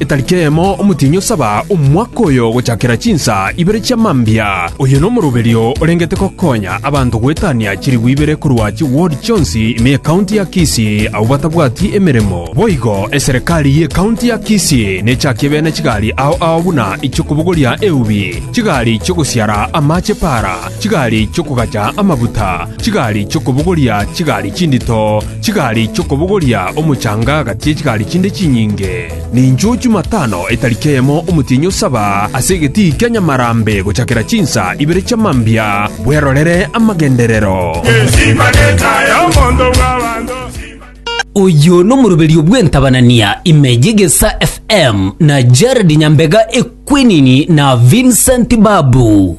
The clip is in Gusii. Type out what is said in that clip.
Etariki eyemo omotienyi osaba omwaka oyo gochakera chinsa ibere chia mambia. Oyo nomoroberio orengete gokonya abanto goetania chirigwa ibere korwa chiward chionsi ime y'ekaunti ya Kisii abwo batabwati emeremo. Boigo eserekari y'ekaunti ya Kisii nechakie bene chigari ao ao buna ichiokobogoria eubi, chigari chi'ogosiara amache para, chigari chi'okogacha amabuta, chigari chi'okobogoria chigari chindito, Chigari chi'okobogoria omochanga agati ye chigari chinde chinyinge, ninchiu chimatano etari keyemo omotienyi osaba ase egetii kia nyamarambe gochakera chinsa ibere chia mambia, bwerorere amagenderero. Oyo nomoroberio bw'entabanania ime y'egesa FM na Jared Nyambega Ekwenini na Vincent Babu.